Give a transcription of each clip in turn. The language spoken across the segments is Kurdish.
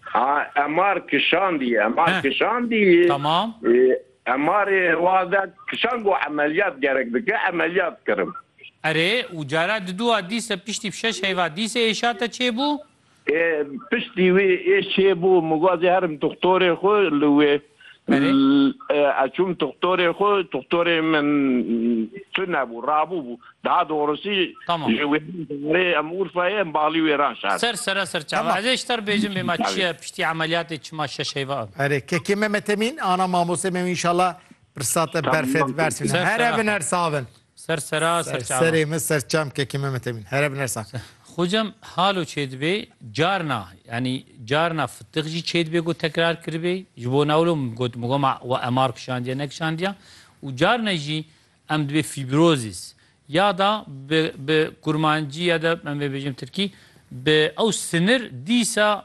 Ha emar kişandî emar kişandî Tamam. Emarê wade kişan go emeliyat gerek dike emeliyat kirim. Erê û cara diduwa dîse piştî şeş heyva dîse êşa te çêbû? Ê piştî wê ê çêbû min got zê herim dixtorê xwe li wê Ez çûm doktorê xwe, doktorê min tunebû, rabû bû. Daha doğrusu ji wêrê em Urfayê em balî wêran şar. Ser sere ser çawa. Ez ê ji te re bêjim bê ma çi ye piştî emeliyatê çima şeş heyva ava. Erê kekê Memet Emîn ana mamostê me wî inşallah pirsa te berfê dibersivîne. Her evin her savin. Ser sera ser çavan. Ser serê min ser çamkekî me Mete Mîn. Here bi nersa. Xocam halo çêdibê carna yanî carna fitiq jî çêdibê ku tekrar kiribê ji bo newlo got mi goma we emar kişandiye nekişandiya û carna jî em dibê fîbrozîs ya da bi bi kurmancî ya da em vê bêjim tirkî bi ew sinir dîsa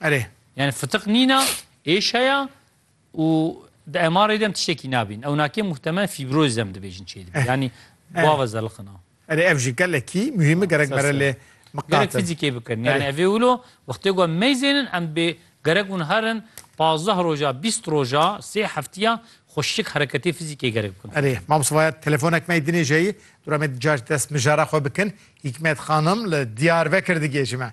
Erê. Yani fıtık nîna, êş heya û di emarê dem tiştekî nabîn. Ewnakê muhtemel fîbrozî dem dibêjin çê dibî. Yani bava zelixina. Erê ev jî gelekî muhîmi gerek mere lê miqatin. Gerek fizîkê bikin. Yani evê wilo wextê ku em meyzênin em bê gerek hûn herin pazdeh roja, bîst roja, sê heftiya xweşik hereketê fizîkê gerek bikin. Erê mamosta vaya telefonek me dinê jeyî dura me di car dest mijara xwe bikin. Hîkmet xanim li Diyarbekir digihêje me.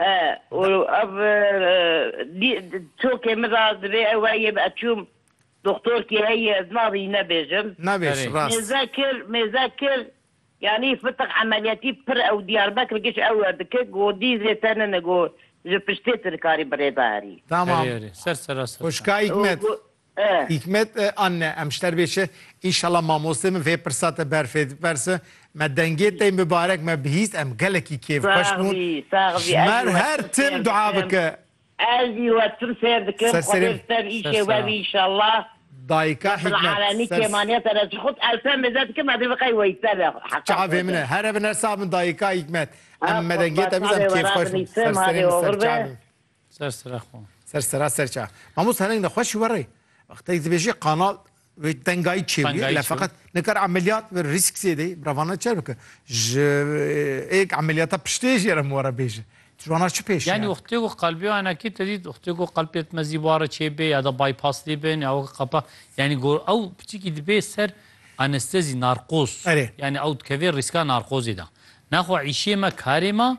E, û ev dî çokê min ra divê ew heye bi eçûm doxtorkî heye ez nabî nebêjim. Nabêj, Erê. rast. Mêze kir, mêze kir, yanî fitiq emeliyatî pir ew Diyarbekir giş ew e dikir, go dî zê tenine go ji piştê tu dikarî bi rê de herî. Tamam. Erê, erê. Ser serasir. Xweşikayîk O met. go e. Hîkmet, A ne, em ji te re bê çi? Înşela mamostê min vê pirsa te ber fê diperse. Me dengê te mibarek me bihîst em gelekî kêf xweş bûn. Ji me re her tim dua bike. Ez jî we tim sêr dikim xwedê bi ser îşê we bî înşela. Dayika Hîkmet, Ser çavê min e here bin her sax bin dayika Hîkmet. Em me dengê te bihîst em kêfxweş bûn. Ser serê min ser çavê min. Ser sera xwe. Ser sera ser ça. Mamost hereng de xweş were. Wextê dibêje kanal ve tengayî çê bûye le feqet nikar emeliyat ve risk zêde bravana çer bike. Ji êk emeliyata piştê jê re were bêje. Cwana çi pêş Yani wextê ku qalbê anakî te dît wextê ku qalb yetmezî ware çê bê ya da bypass lê bin ya weke qapa yani gor ew piçikî dibê ser anestezî narkoz. Erê. Yani ew dikevê rîska narkozê de. Nexwe îşê me karê me